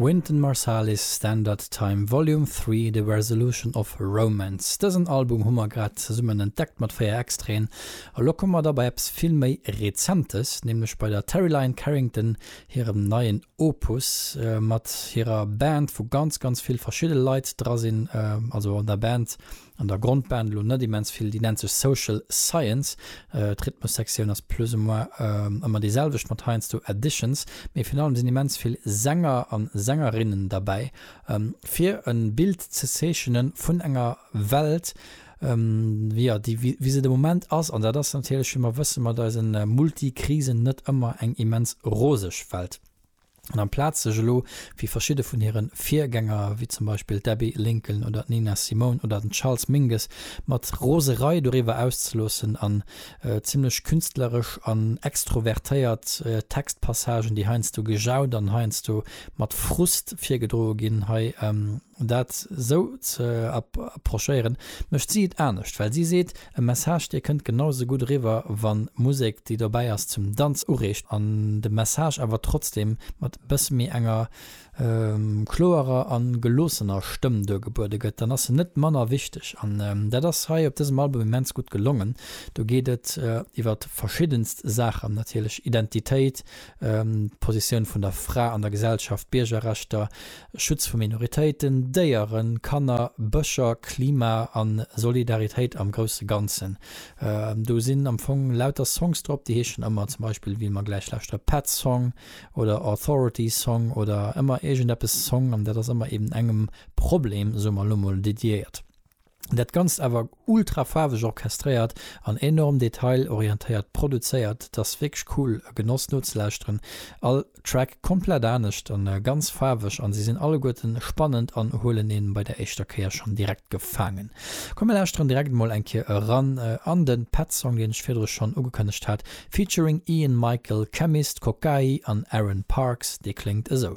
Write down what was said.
Wynton Marsalis, Standard Time Volume Three, The Resolution of Romance. Dësen Album hu mer grad zesummen entdeckt mat 4 Extraen. Elo komme mer da bei eppes vill méi Rezentes, nämlech bei der Terri Lyne Carrington hirem neien Opus mat hirer Band, wou ganz, ganz vill verschidde Leit dra sinn. Also an der Band An der Grondband elo net immens vill, déi nennt sech Social Science. D'Rhythmussektioun ass plus ou moins ëmmer déi selwecht, mat heiansdo Additions, mee virun allem sinn immens vill Sänger a Sängerinnen derbäi, fir e Bild ze zeechene vun enger Welt, jo, déi wéi se de Moment ass. An dat ass natierlech, wéi mer wësse mat eise Multikrisen, net ëmmer eng immens roseg Welt. An amplaz sech elo, wéi verschidde vun hire Virgänger, wéi zum Beispill d'Abbey Lincoln oder d'Nina Simone oder den Charles Mingus, mat Roserei doriwwer auszeloossen an zimlech künstleresch an extrovertéiert Textpassagen, déi heiansdo gejaut an heiansdo mat Frust virgedroe ginn, hei Dat esou ze approchéieren, mécht si et anescht, well si seet, e Message, dee kënnt genau esou gutt eriwwer, wa Musek, déi dobäi ass, zum Danz ureegt an de Message awer trotzdeem mat e bësse méi enger kloerer a geloossener Stëmm duergebuede gëtt, dann ass se net manner wichteg. An dat ass hei op dësem Album immens gutt gelongen. Do geet et iwwer verschiddenst Saachen natierlech, Identitéit, d'Positioun vun der Fra an der Gesellschaft, Biergerrechter, Schutz vu Minoritéiten, Déieren, Kanner, Bëscher, Klima a Solidaritéit am grousse Ganzen. Do sinn am Fong lauter Songs drop, déi heeschen ëmmer zum Beispill, wéi mer gläich lauschteren, Pets Song oder Authority Song oder ëmmer iergendeppes Song an dat ass ëmmer eben engem Problem, soe mer elo mol, dediéiert. Dat Ganzt awer ultra faarweg orchestréiert an enorm detailorientéiert produzéiert. T'ass wierklech cool, e Genoss nozelauschteren. All Track komplett anescht an ganz faarweg an se sinn alleguerten spannend an huelen een bei der éischter Kéier schonn direkt gefaangen. Komm mir lauschteren direkt emol eng Kéier eran an den Pet Song deen ech virdrun schonn ugekënnegt hat featuring Ian Michael, Chemist, Kokayi an Aaron Parks. Dee kléngt esou.